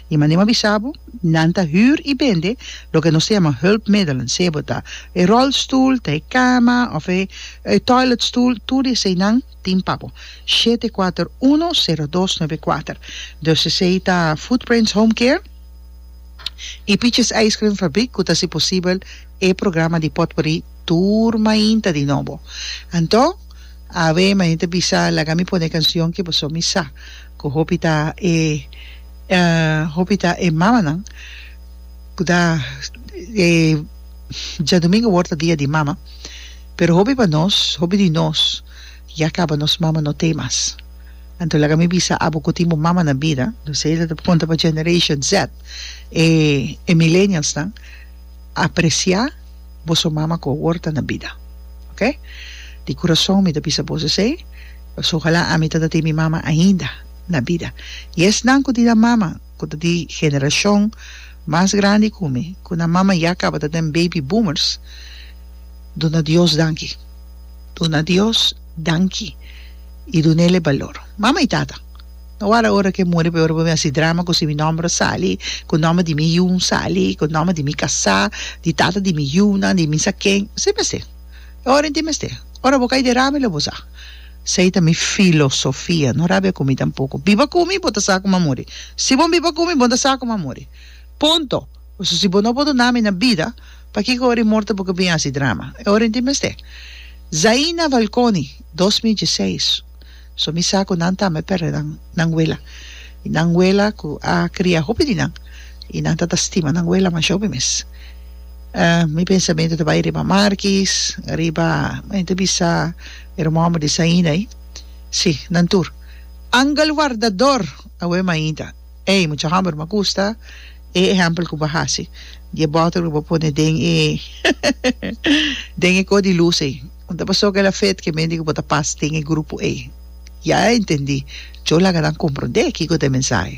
I manera mi a bisa bo, nan ta hür i bende loke nos ta yama hulpmiddelen, sea bo ta e rolstoel, ta e kama òf e toiletstoel, tur di eseinan tin pa bo. Shete kuater uno sero dos nove kuater. Dus esei ta Footprints Home Care i Piches Ijskrim Fabrik ku ta hasi posibel e programa di potpori tur mainta di nobo. Anto, a we, manera mi ta bisa, laga mi pone e kansion ke boso mi sa. Cu hopi ta e hopi ta e mamanan cu ta e Djadomingo word ta dia di mama pero hopi pa nos hopi di nos ya caba nos mama no t'e mas anto laga mi bisa abo cu tin bo mama na bida lo siy lo ta punta pa generation Z e e milenialsnan aprecia boso mama cu awor ta na bida ok di curason mi ta bisa bos esey pasobra ojalá ami ta ta tin mi mama ainda na bida y esnan cu tin nan mama cu ta di generacion mas grandi cu mi cu nan mama ya caba ta den baby boomers duna Dios danki duna Dios danki y dunele balor mama y tata. No wòrda ora ke muri p'e ora bo mi hasi drama ku si mi nòmber a sali, ku nòmber di mi yu sali, ku nòmber di mi kasá, di tata di mi yunan, di mi sa ken. Esei mester. E ora en tin mester. Ora bo kai derama i lo bo sa. Esei ta mi filosofia. No rabia ku mi tampoko. Biba ku mi bo ta sa ku mi a muri. Si bo biba ku mi bo no ta sa ku mi a muri. Punto. Pasobra si bo no a bordona mi na bida, pakiko ora i morto bo ke bini hasi drama? E ora en tin mester. Zaina Valconi, dos mil dieseis. So mi sa cu nan tambe perde nan nan wela. Y nan wela cu a cria hopi di nan. Y nan ta ta stima nan wela masha hopi mes. Ehm, mi pensamento ta bay riba Markis, riba, mi ta bisa e hermano di Saina ay. Si, nan tur. Angel wardador! Awe mainta. Ey, mucha homber m'a gusta e ehempel cu bo haci di e bottle cu bo pone den e den e co di luz ey. Un ta pasó kela fet ke mende ke bo ta pas den e grupo ei ya a entendí. Djo laga nan komprondé kiko ta e mensahe.